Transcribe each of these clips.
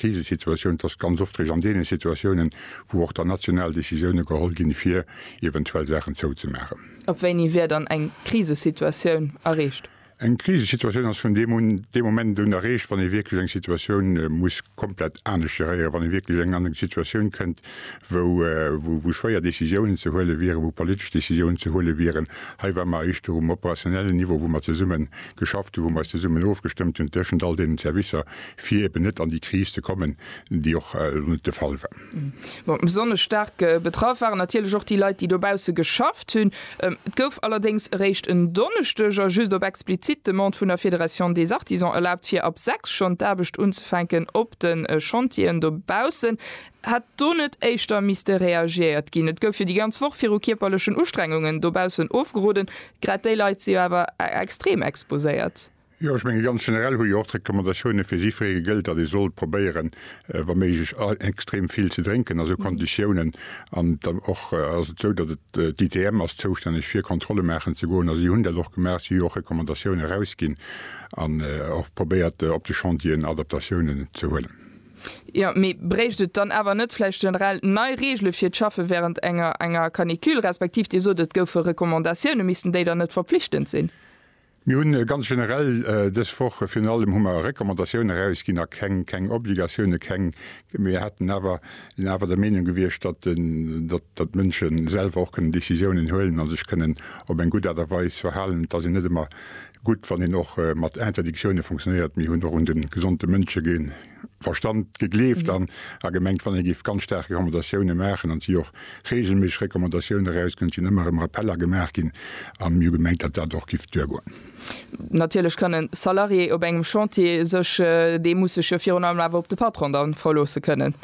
Krisesituatioun, et ass ganz oft eréischt an deene Situatiounen, wou och dann national Décisioune geholl ginn, fir eventuell Saachen zouzemaachen. Ab wéini wär dann eng Krisesituatioun erreecht? Eng Krisesituatioun ass vun deem un, dee Moment un, erreecht, wann ee wierklech eng Situatioun muss komplett anescht geréieren, wann ee wierklech an eng Situatioun kënnt, wou schwéier Décisiounen ze huele wieren, wou politesch Décisiounen ze huele wieren. Hei ware mer éischter um operationellen Niveau, wou mer zesummen geschafft hunn, wou mer eis zesummen ofgestëmmt hunn tëschent all deenen Servicer, fir eben net an déi Kris ze kommen, déi och elo net de Fall war. Bon, besonnesch staark betraff waren natierlech och déi Leit, déi dobausse geschafft hunn. Et gouf allerdéngs eréischt en Donneschdeg a just op explizit Demande vun der Fédération des Artisans erlaabt, fir ab sechs schonn d'Aarbecht unzefänken op de Chantieren dobaussen. Hätt do net éischter misste reagiert ginn? Et gouf jo déi ganz Woch viru kierperlechen Ustrengungen dobaussen ofgeroden, grad déi Leit si jo awer extrem exposéiert. Jo, ech menge ganz generell hu jo och d'Recommandatioune fir jiddweree gëllt, datt ee soll probéieren, wa méiglech extrem vill ze drénken a sou Konditiounen. An et ass och ass et esou, datt et d'ITM ass zoustänneg fir Kontrolle maachen ze goen a si hunn dat och gemaach. Si hu jo och Recommandatioune erausginn an och probéiert op de Chantieren Adaptatiounen ze huelen. Jo, mee bréicht et dann awer net vläicht generell nei Reegele fir d'Schaffe wärend enger enger Canicule, respektiv Dir sot et goufe Recommandatioune, missten déi dann net verpflichtend sinn? Mir hunn ganz generell dës Woch, virun allem hu mer Recommandatiounen erausginn a keng, keng Obligatiounen, keng. Mir hätten awer, sinn awer der Meenung gewiescht, datt, datt, datt d'Mënsche selwer och kënnen Décisiounen huelen a sech kënnen op eng gutt Aart a Weis verhalen. Et ass jo net ëmmer gutt, wann een och mat Interdictiounen fonctionnéiert. Mir hunn och un de gesonde Mënsche ge, Verstand, gegleeft an a gemengt, wann ee géif ganz staark Recommandatioune maachen an et si och reegelméisseg Recommandatioune erausginn, et sinn ëmmer erëm Rappeller gemaach ginn a mir hu gemengt, datt dat och géif duergoen. Natierlech kann e Salarié op engem Chantier sech, dee muss sech jo virun allem awer op de Patron da verloosse kënnen.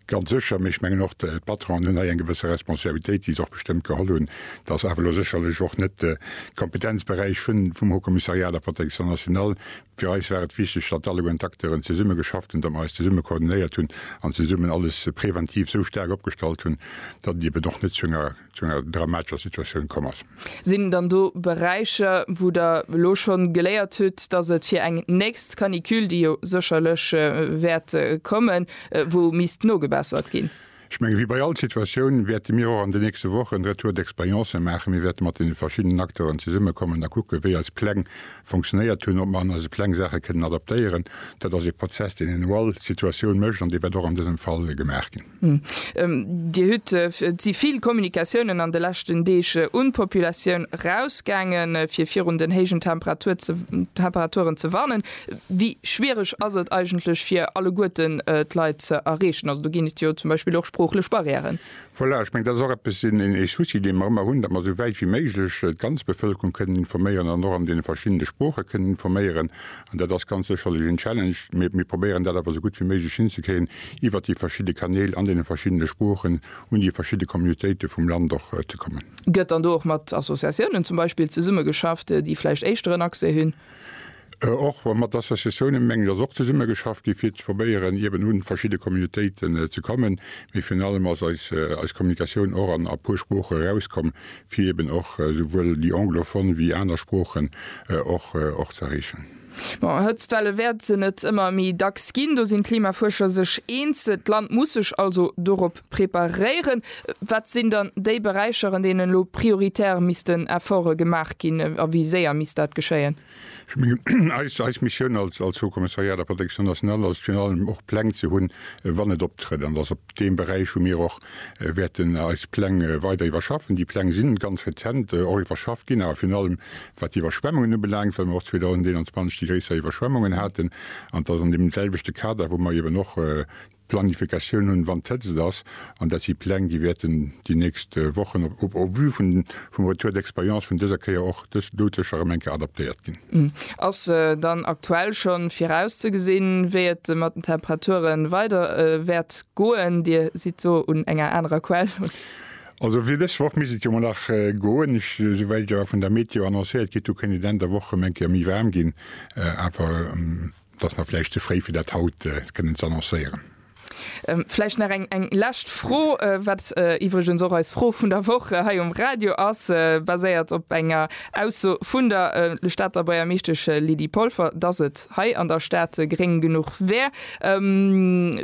Ganz sécher, mee ech mengen och d'Patronen hunn hei eng gewësse Responsabilitéit, déi se och bestëmmt geholl hunn. Et ass awer elo sécherlech och net de Kompetenzberäich vum Haut-Kommissariat a der Protection nationale. Fir eis war et wichteg, datt alleguerten d'Acteuren zesumme geschafft hunn, datt mer eis zesumme koordinéiert hunn an zesummen alles preventiv esou staark opgestallt hunn, datt et eben och net zu enger zu enger dramatescher Situatioun komm ass. Sinn dann do Beräicher, wou Der elo schonn geléiert hutt, datt et fir eng nächst Canicule, déi jo sécherlech wäert kommen, wou misst nogebessert ginn? Ech menge wéi bei all Situatioun wäerte mir och an den nächste Wochen en Retour d'expérience maachen. Mir wäerte mat deene verschiddenen Acteuren zesummekommen a kucken, wéi eis Pläng funktionéiert hunn, ob mer an eise Pläng Saache kënnen adaptéieren. Dat ass ee Prozess, deen een u all Situatioun mécht an dee wäert och an dësem Fall gemaach ginn. Dir hutt, et si vill Kommunikatiounen an de leschten Deeg un d'Populatioun erausgaangen, fir virun den héijen Temperaturen ze warnen. Wéi schwiereg ass et eigentlech fir alleguerten d'Leit ze erreechen? Also do ginn et jo zum Beispill och sproochlech Barrièren. Voilà, ech mengen dat ass och eppes, een Souci dee mer ëmmer hunn, datt mer esou wäit wéi méiglech d'ganz Bevëlkerung kënnen informéieren an och an deene verschiddene Sprooche kënnen informéieren. An dat ass ganz sécherlech en Challenge, mee mir probéieren dat awer esou gutt wéi méiglech hinzekréien iwwert déi verschidde Kanäl an deene verschiddene Sproochen un déi verschidde Communautéite vum Land och ze kommen. Gëtt dann do och mat Associatiounen zum Beispill zesummegeschafft, déi vläicht éischteren Accès hunn? Och mat Associatiounen, mengen ech, ass och zesumme geschafft gi fir ze probéieren eben un verschidde Communautéiten ze kommen. Mee virun allem ass eis eis Kommunikatioun och an a puer Sprooche erauskomm, fir eben och souwuel déi anglophone wéi aner Sproochen och och ze erreechen. Bon, Hëtztwelle wäerten et ëmmer méi dacks ginn, do sinn d'Klimafuerscher sech eens. D'Land muss sech also dorop Preparéieren. Wat sinn dann déi Beräicher, an deenen elo prioritär missten Efforte gemaach ginn, a wéi séier misst dat geschéien? Ech mengen, eis Missioun als Haut-Kommissariat à la Protection nationale ass et virun allem, och Pläng ze hunn, wann et optrëtt. An et ass op deem Beräich, wou mir och wäerten eis Pläng weider iwwerschaffen. Déi Pläng si ganz rezent och iwwerschafft ginn, awer virun allem wat d'Iwwerschwemmungen ubelaangt, well mer och 2021 déi gréisser Iwwerschwemmungen haten. An et ass an deem selwechte Kader, wou mer eeben och Planifikatioun hunn, wann d'Hëtzt ass, an dat si Pläng, déi wäerten déi nächst Wochen op au vu vum Retour d'expérience vun dëser Kéier och dës doudsécher erëm eng Kéier adaptéiert ginn. Ass dann aktuell schonn virauszegesinn, wéi et mat den Temperature weider wäert goen? Dir sidd do un enger anerer Quell. Also fir dës Woch misst et jo mol nach goen. Ech, souwäit ech awer vun der Meteo annoncéiert kritt hunn, kéint et Enn der Woch erëm eng Kéier méi waarm ginn, awer. Et ass nach vläicht ze fréi fir dat haut kënnen z'annoncéieren. Vläicht nach eng eng lescht Fro, wat iwwregens och eis Fro vun der Woch hei um Radio ass, baséiert op enger Ausso vun der Stater Buergermeeschtesch Lydie Polfer, datt et hei an der Stad gréng genuch wär.